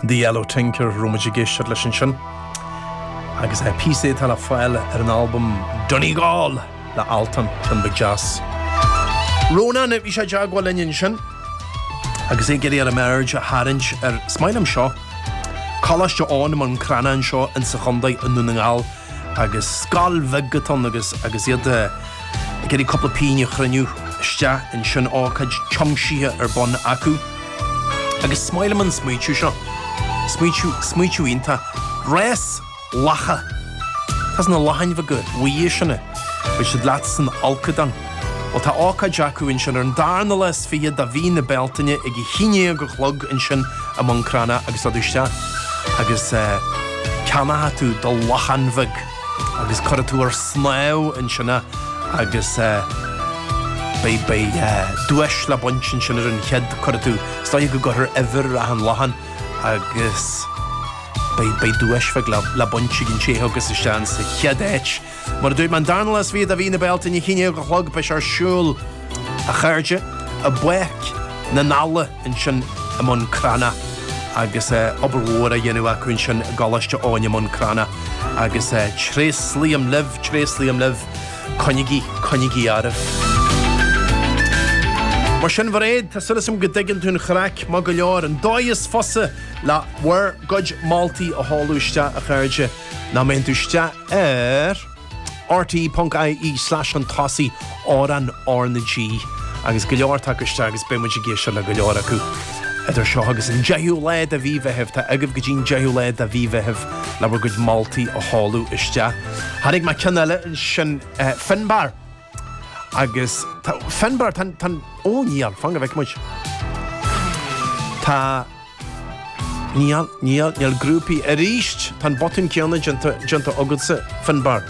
The Yellow Tinker, raibh muid ag éisteacht leis ansin, agus é píosaí atá le fáil ar an albam Donegal le Altan, tune beag deas. Rónán, bhí sé i dteagmháil linn ansin, agus é ag iarraidh orm aird a tharraingt ar, is maith liom seo, Coláiste Eoghain i mBun Cranncha anseo insa chontae i nDún na nGall. agus scoil bheag atá ann agus agus iad ag iarraidh cúpla pingin a chruinniú isteach ansin, ócáid tiomsithe ar bun acu. Agus is maith liom an smaoitiú seo, smaoitiú, smaoitiú iontach, rás lacha! Tá na lachain bheaga bhuí sin, beidh siad leat san fholcadán. Bhuel, tá ócáid acu ansin ar an darna lá is fiche de mhí na Bealtaine ag a haon déag a chlog ansin i mBun Cranncha agus dul isteach agus ceannóidh tú do lachain bheag agus cuirfidh tú ar snámh ansin é agus beidh duais le baint ansin ar an chéad cuirfidh tú. Is dóigh go gcuirfear uimhir ar an lachain agus beidh duais bheag le baint ag an té a thagas isteach insa chéad áit. Mar a dúirt mé an darna lá is fiche de mhí na Bealtaine a haon déag a chlog beidh sé ar siúl a chairde i bPáirc na nEala ansin i mBun Cranncha agus obair mhór á dhéanamh acu ansin i gColáiste Eoghain i mBun Cranncha agus tréaslaím libh, tréaslaím libh, coinnigí, coinnigí oraibh. Mar sin Mhairéad, tá súil agam go dtuigeann tú an chraic maith go leor. An dóigh is fusa le bhur gcuid moltaí a sheoladh isteach a chairde ná má théann tú isteach ar rte.ie/an tosaigh ar an RnaG agus go leor ag teacht isteach agus beidh muid ag éisteacht le go leor acu idir seo agus an 10ú lá de mhí Mheithimh. Tá agaibh go dtí an 10ú lá de mhí Mheithimh le bhur gcuid moltaí a sheoladh isteach. Tháinig mé ceann eile ansin, Finbar. Agus tá Finbar, tá an, tá an, ó níl, fan go bhfeicfidh muid. Tá, níl an, níl an, níl grúpaí arís, tá an botún céanna déanta, déanta agatsa, Finbar.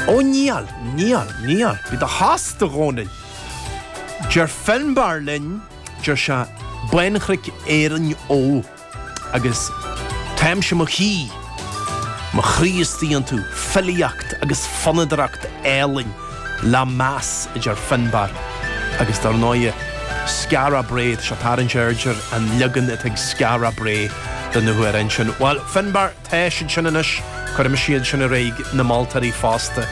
Ó níl, níl, níl, bhí do shas do Dhónaill. Deir Finbar linn, deir sé, Bánchnoic Éireann Ó. Agus táimse 'mo shuí, mo chroí istigh iontu, filíocht agus fonnadaireacht álainn le meas, a deir Finbar agus, dar ndóighe, Skara Brae. Tá sé ag tarraingt aird ar an leagan atá ag Skara Brae de na hamhráin sin. Bhuel, Finbar, tá siad sin anois, cuirimis iad sin ar aghaidh chuig na moltóirí fosta.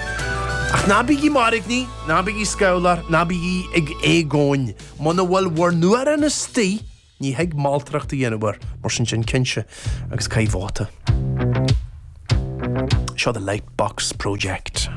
Ach ná bígí ag mairgní, ná bígí scamhláir, ná bígí ag éagaoin. Muna bhfuil bhur n-amhrán istigh, Ní thig moltóireacht a dhéanamh air, mar sin déan cinnte, agus caith vóta. Seo the light box project.